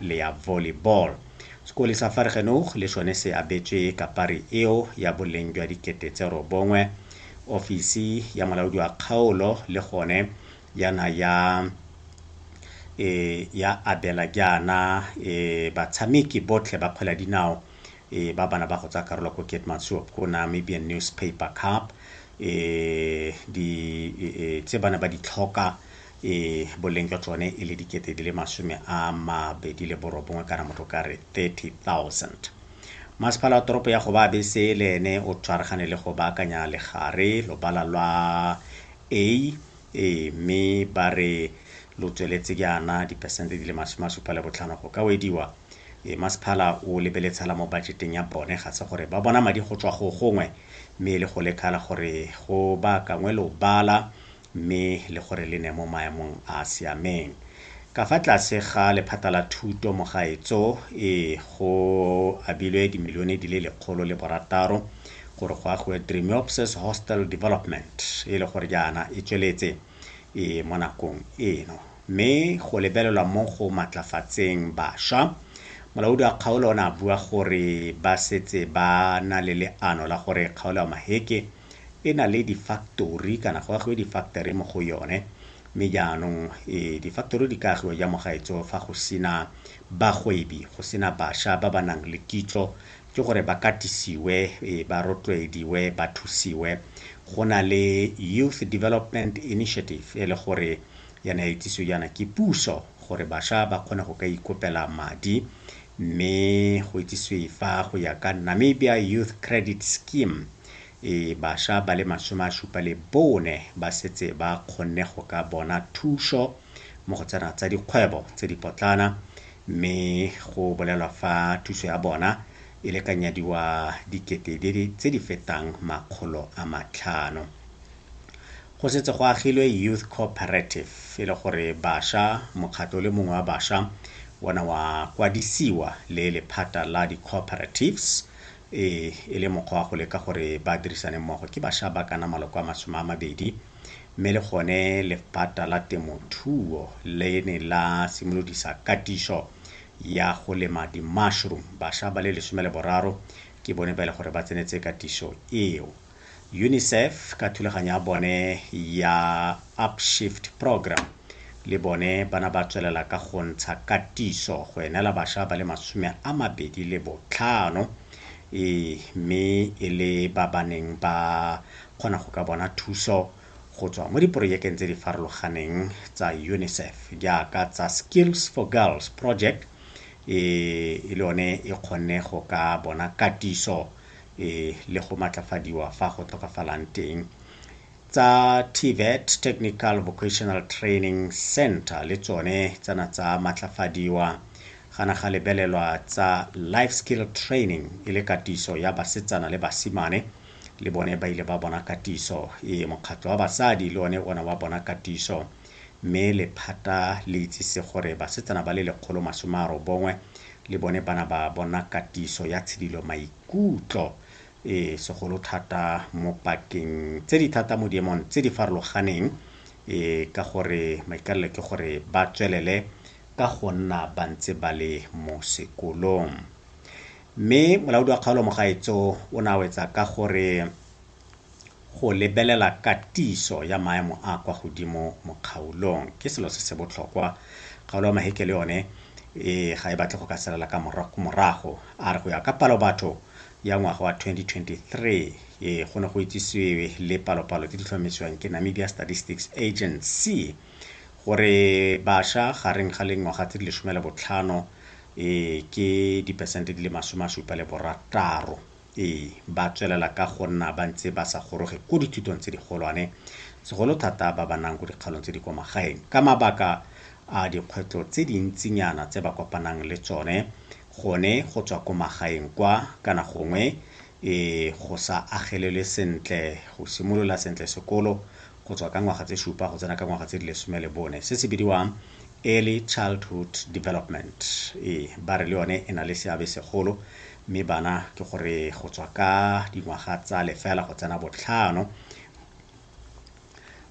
le ya volleyball. Sekole sa Vergenoeg le sone se abetswe kapari eo ya boleng jwa dikete tse robongwe. Ofisi ya molaodi wa kgaolo le gone yana ya e ya abela jaana e batshameki botlhe ba kgwele ya dinao e ba bana ba go tsa karolo ko Keetmanshoop ko Namibian Newspaper Cup e di e, e, tse bana ba di tlhoka e boleng jwa tsone e le dikete di le masome a mabedi le borobongwe kana motho ka re 30,000 masepala wa toropo ya go ba bese le ene o tshwaragane le go baakanya legare lobala lwa a e mme ba re lo tsweletse jaana diperesente di le masome a supa le botlhano go ka wediwa e masepala o lebeletshala mo bajeteng ya bone ga se gore ba bona madi go tswa go gongwe mme e le go lekala gore go baakangwe lobala mme le gore le ne mo maemong a a siameng. Ka fa tlase ga lephata la thuto mo gaetso, ee, go abilwe dimilione di le lekgolo le borataro gore go agiwe Dremeopsis Hostel Development, e le gore jaana e tsweletse ee mo nakong eno. Mme go lebelelwa mo go matlafatseng basha, molaodi wa kgaolo o ne a bua gore ba setse ba na le leano la gore kgaolo ya Maheke e na le di-factory kana go agiwe di-factory mo go yone mme jaanong e, di-factory di ka agiwa ja mo gaetso fa go sena bagwebi go sena bašwa ba ba nang le kitso ke gore ba katisiwe e, ba rotloediwe ba thusiwe go na le youth development initiative e le gore yana e tsiso yana ke puso gore bašwa ba kgone go ka ikopela madi mme go itsiswe fa go ya ka namibia youth credit scheme e basha ba le masome a supa le bone ba setse ba kgonne go ka bona thuso mo go tsena tsa dikgwebo tse dipotlana mme go bolelwa fa thuso ya bona e lekanyadiwa dikete tse di fetang makgolo a matlhano go setse go agilwe youth cooperative e le gore basha mokgatlho le mongwe wa basha ona wa kwadisiwa le lephata la di-cooperatives Ee, e le mokgwa wa go leka gore ba dirisane mmogo. Ke basha ba kana maloko a masome a mabedi, mme le gone lephata la temothuo le ne la simolodisa katiso ya go lema di-mushroom. Basha ba le lesome le boraro ke bone ba e le gore ba tsenetse katiso eo. UNICEF ka thulaganyo ya bone ya Upshift Program le bone bana ba tswelela ka go ntsha katiso go enela basha ba le masome a mabedi le botlhano e mme e le ba ba neng ba kgona go ka bona thuso go tswa mo diporojekeng tse di farologaneng tsa UNICEF jaaka tsa Skills for Girls Project e le yone e kgonne go ka bona katiso e le go matlafadiwa fa go tlhokafalang teng. Tsa TVET Technical Vocational Training Center le tsone tsana tsa matlafadiwa gana ga lebelelwa tsa life skill training e le katiso ya basetsana le basimane le bone ba ile ba bona katiso e mokgatlho wa basadi le one ona wa bona katiso mme lephata le itsise gore basetsana ba le lekgolo masome a robongwe le bone ba na ba bona katiso ya tshidilo maikutlo e segolo thata mo pakeng tse di thata mo diemong tse di farologaneng e ka gore maikalelo ke gore ba tswelele ka go nna ba ntse ba le mo sekolong mme molaodi wa kgaolo mogaetso o ne a wetsa ka gore Go lebelela katiso ya maemo a a kwa godimo mo kgaolong ke selo se se botlhokwa. Kgaolo ya Maheke le yone ga e batle go ka salela ka morago, a re go ya ka palobatho ya ngwaga wa 2023, go ne go itsisiwe le palopalo tse di tlhomamisiwang ke Namibia Statistics Agency gore basha gareng ga lingwaga tse di lesome le botlhano ke diperesente di le masome a supa le borataro. Ee, ba tswelela ka go nna ba ntse ba sa goroge ko dithutong tse digolwane, segolo thata ba ba nang ko dikgaolong tse di kwa magaeng. Ka mabaka a dikgwetlho tse dintsinyana tse ba kopanang le tsone, gone go tswa ko magaeng kwa, kana gongwe go sa agelelwe sentle, go simolola sentle sekolo, go tswa ka ngwaga tse supa go tsena ka ngwaga tse di lesome le bone, se se bidiwang Early Childhood Development. Ee, ba re le yone e na le seabe segolo mme bana ke gore go tswa ka dingwaga tsa lefela go tsena botlhano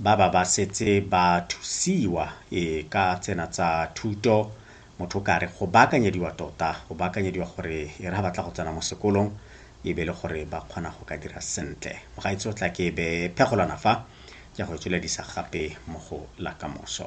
ba ba ba setse ba thusiwa e ka tsena tsa thuto motho o kare go baakanyediwa tota go baakanyediwa gore e re ga batla go tsena mo sekolong e be le gore ba kgona go ka dira sentle mogaitse o tla ke be phegolwana fa ke go tsweledisa gape mo go la kamoso